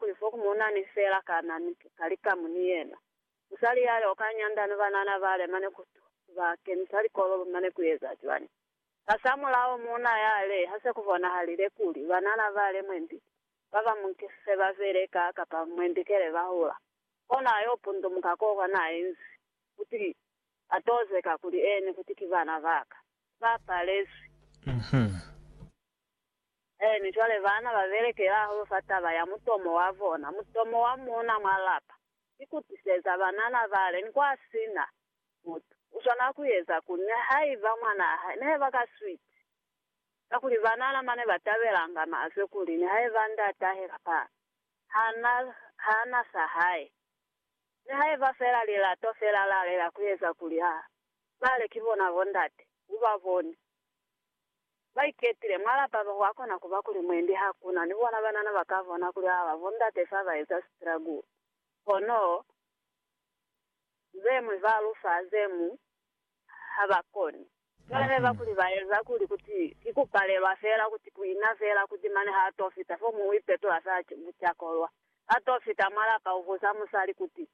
Kuli fo ku muna ni fela kana ni ki kali kamu ni yena. Musali ya yo ka nyanda ni banana bale mane ku tu ba kenisa likololo mane ku eza cwani? Hasamulaho muna ya le, ha se ku bonahalile kuli banana bale mwendi ba ba mu nkisise ba bele ka kapa mwendi kele ba hula. Kona yo pundumuka ko kwa na inzi, kuti, A tozeka kuli eni kuti ki bana ba ka. Ba palezwi. Ee, mi cwale baana ba belekela hahulu fa taba ya mutomo wa bona, mutomo wa muuna mwa lapa. Ki ku tiseza banana bale ni kwa sina mutu. U swanela ku eza ku ne haiba mwanaa hae ne ba ka sweet. Kakuli banana mane ba tabelanga mazwe kuli nihaiba ndatahe kapa ha na, ha na sa hae, nihaiba fela lilato fela la lela ku eza kuli ha bale ki bona bondate, u ba boni. ba iketile mwa lapa ba kwa kona kuba kuli mwendi ha ku na ni bona banana ba ka bona kuli ha ba bo ndate fa ba eza sitragulo. Kono ze ñwi ba lu fa ze ñwi ha ba koni. Ba leba kuli ba eza kuli kuti ki ku palelwa fela, kuti ku ina fela, kuti mane ha to fita fo mu u ipetola fela bucakolwa. Ha to fita mwa lapa u buza musali kuti,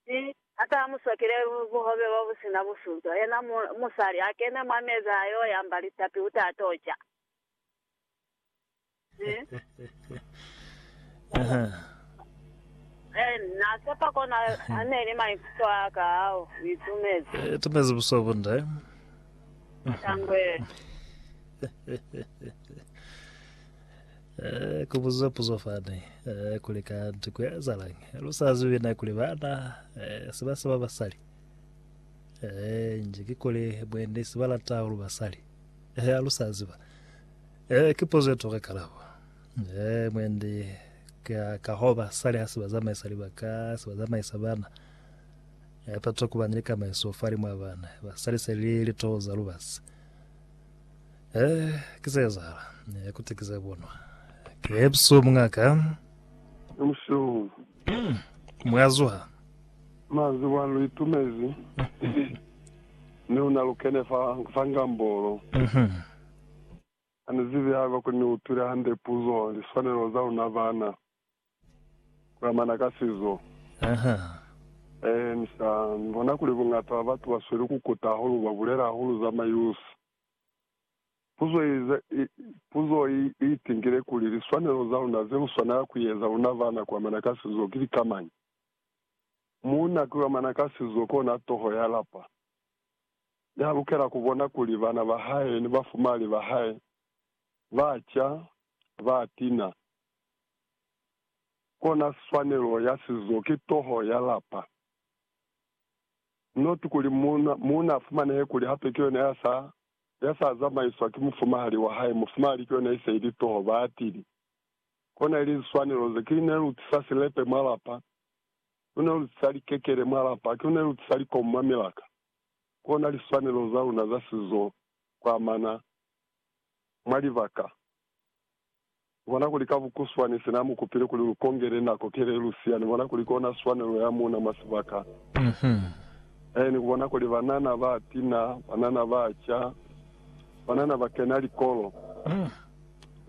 Mi ata musokele buhobe bobusina busuzo, yena mu, musali, akene mwa meza ayo yamba litapi uta ato ca. Mi, Aha. en, na sepa kona aneli maikuto aka ao, itumezi. E, tumezi buso bunde. Tangwe. Eh, ku buza puzo fani, eh, kuli kanti ku ezalañi? Lu sa zibi na kuli bana, eh, si ba saba basali. Eh, nji ki kuli mwendi si ba lata hulu basali. Eh, alu sa ziba. Eh, ki puzo e toka kalabo. Eh, mwendi ka, ka ho basali ha si ba zamaisa libaka, si ba zamaisa bana. Eh, pato ku ba ni likamaiso fa limwa bana. Basali se li litoho za lubasi. Eh, ki se ezahala. Eh, kuti ki se bonwa. Ke busuhu, mungaka. Ke busuhu. Mm, mwa zuha. Mwa ziba, lu itumezi. Ni luna lu kene fa, fa ngambolo. Mhm. Ha ni zibi haiba kuli ni utwile hande puzo, liswanelo za luna bana. kulamana ka sizo. Ahaa. Eehe, ni sa ni bona kuli buñata ba batu ba sweli ku kuta hahulu, ba bulela hahulu za mayusi. Puzo i, i, puzo i, i itingile kuli, Liswanelo za luna ze lu swanela ku eza, luna bana, kulamana ka sizo, ki lika mañi? Muuna kulamana ka sizo kona toho ya lapa. Ya lukela ku bona kuli bana ba hae ni bafumali ba hae ba ca, ba tina, Kona swanelo ya sizo ki toho ya lapa, not kuli muuna, muuna afumanehe kuli hape kiyona ya sa, ya sa zamaiswa ki mufumahali wa hae, mufumahali kiyona ise ili toho, baatili. Kona ili liswanelo ze, ki lune lu tisa silepe mwa lapa, ki lune lu tisa likekele mwa lapa, ki lune lu tisa likomu mwa milaka. Kona liswanelo za luna za sizo kuamana mwa libaka Ni bona kuli ka bukuswani se na mu kupile kuli lu kongele nako kele lu siya, ni bona kuli kona swanelo ya muuna mwa sibaka se. Ee, ni kubona kuli banana ba tina, banana ba ca, banana ba kena likolo,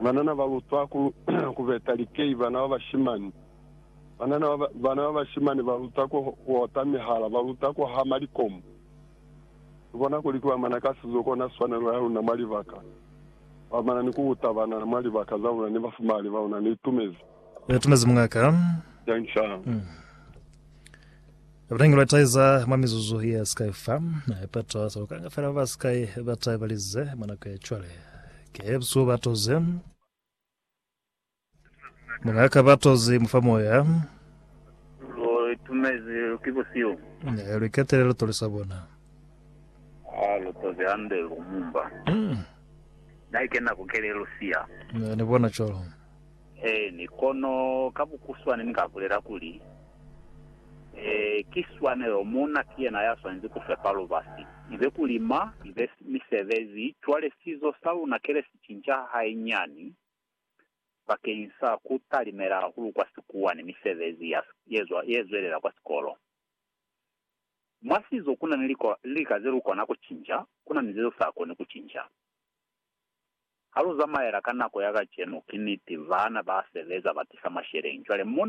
banana ba lutwa ku, ku beta likei, bana ba bashimani, banana ba, bana ba bashimani ba luta ku, ku ota mihala, ba luta ku hama likomu. Ni bona kuli ki bamana ka sizo kona swanelo ya luna mwa libaka. Ba mana ni ku uta banana mwa libaka za bona ni bafumali ba bona. Ni itumezi. Ni itumezi muñakaa. Thanks hahulu. Bunangilwa taiza mwa mizuzu ye sikai fa. Ipeto za kukanga fela ba ba sikai ba taibalize mwa nako ya cwale. Ke busuhu ba toze. Muna kabatozi mufa moya. Lo itumezi ki busihu. Ne lu iketele lu tolisa bona. Ha lu tozi hande lu mumba. Mm. Na ikena ku kele lu siya. Ne ni bona cwalo. Eeni, kono ka bukuswane ni ka bulela kuli, Ee, ki swanelo, muuna ki yena ya swanezi ku fepa lubasi. Ibe ku lima, ibe misebezi, cwale sizo sa luna kele si cinca hainyani. bakeñisa ku talimela hahulu kwa sikuwa ni misebezi ya ye zwelela kwa sikolo. Mwa sizo ku na ni lika ze lu kona ku cinca, ku na ni ze lu sa koni ku cinca. Ha lu zamaela ka nako ya kacenu, ki niti, baana ba sebeza ba tisa masheleñi. Cwale, muna.